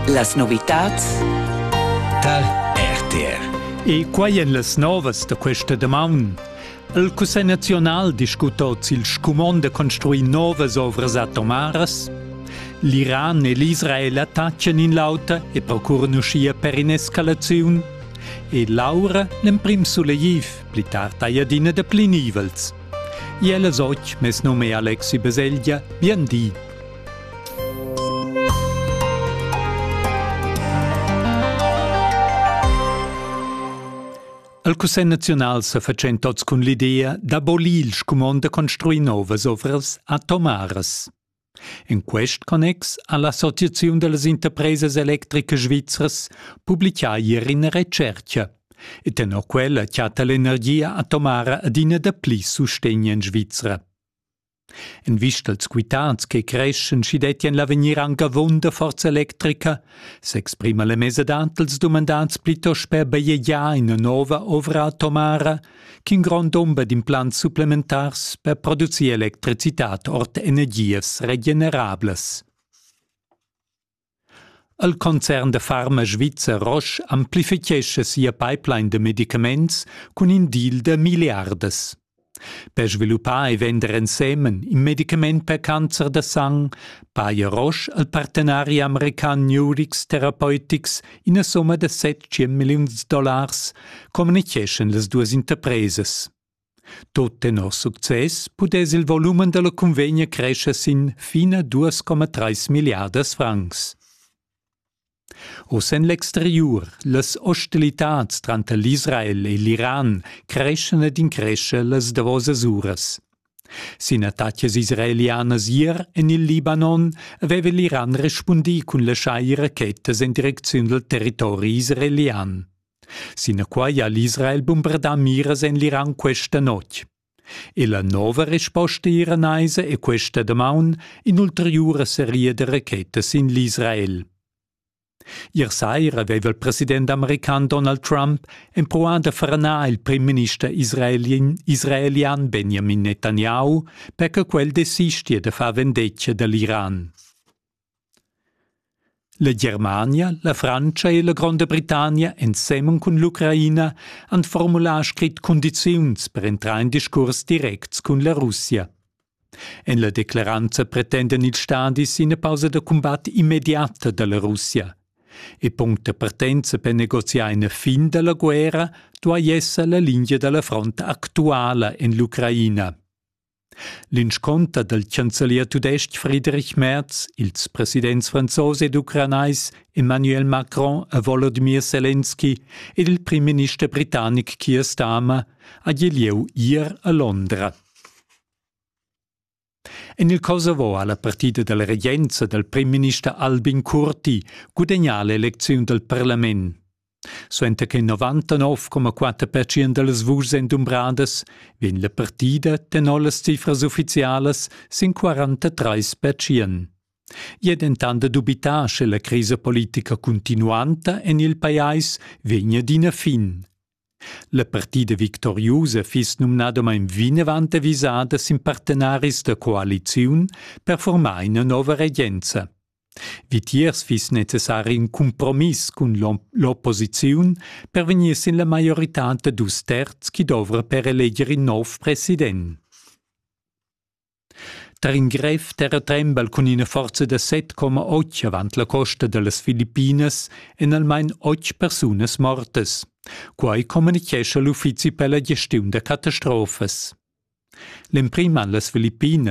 Las novitads tar RTR. E quai en las novas da questa damaun. Il Cussegl naziunal discuta oz il scumond da construir novas ovras atomaras. L'Iran e l'Israel attaccan in l'auter e procuran uschia per in'escalaziun. E l'aura l'emprim sulegtiv, pli tard hai adina da pli nivels. Iel az och, mes nome è Alexi Beselgia, bien di. El Cussegl naziunal sa fatschent tots cun l'idea d'abolir il scumond da construir novas ovras atomaras. In quest connex ha l'Associaziun da las interpresas electricas svizras publicà ieri ina retschercha. E tenor quella chatta l'energia atomara adina da pli sustegn en Svizra. En vista als quitads che creschan, schi dettien l'avegnir anc avon da forza electrica, s'exprima la mesadad dels dumandats plitost per bajegiar ina nova ovra atomara ch'in grond dumber d'implants supplementars per producir electricitad ord energias regenerablas. El concern da farma svizzer Roche amplifichescha sia pipeline da medicaments cun in deal da milliardas. Per sviluppar e vender ensemen in medicament per cancer da sang paja Roche al partenari american Nurix Therapeutics ina somma da 700 milliuns dollars, communiceschan las duas interpresas. Tot tenor success pudess il volumen dalla cunvegna crescher sin fina 2,3 milliardas francs. Oz en l'exteriur, las hostilitads tranter l'Israel e l'Iran creschan ed increscha las davosas uras. Sin attacas israelianas ier en il Libanon aveva l'Iran respundì cun laschar rachetas en direcziun dal territori israelian. Sinaquai ha l'Israel bumbardà miras en l'Iran questa notg. E la nova resposta iranaisa è questa damaun in'ulteriura seria da rachetas sin l'Israel. Ier saira aveva il president american Donald Trump empruà da franar il primminister israelin, israelian Benjamin Netanyahu per che quel desistia da far vendetga da l'Iran. La Germania, la Frantscha e la Gronda Britannia ensemen cun l'Ucraina han formular scrit cundiziuns per entrar in discurs directs cun la Russia. En la declaranza pretendan ils stadis ina pausa da cumbat immediata da la Russia. E punct da partenza per negoziar ina fin da la guerra duai esser la linea da la front actuala en l'Ucraina. L'inscunter dal chancelier tudestg Friedrich Merz, ils presidents franzos ed ucranais Emmanuel Macron e Volodymyr Zelensky ed il primminister britannic Keir Starmer ha gi lieu ier a Londra. En il Kosovo ha la partida dalla regenza dal primminister Albin Kurti gudagnà l'elecziun dal parlament. Suenter che 99,4 percent da las vuschs èn dumbradas, vegn la partida tenor las cifras uffizialas sin 43 percent. I è dentant da dubitar, sche la crisa politica cuntinuanta en il pajais vegn adina fin. La partida victoriusa fiss numnadamain vinavant avisada sin partenaris da coaliziun per formar ina nova regenza. Vitiers fiss necessari in cumpromiss cun l'opposiziun per vegnir sin la maioritad da dus terz chi dovra per eleger in nov president. Tar in grev terratrembel cun ina forza da 7,8 avant la costa da las Filippinas èn almain otg persunas mortas. Quai communichescha l'uffizi per la gestiun da catastrofas. L'emprim han las Filippinas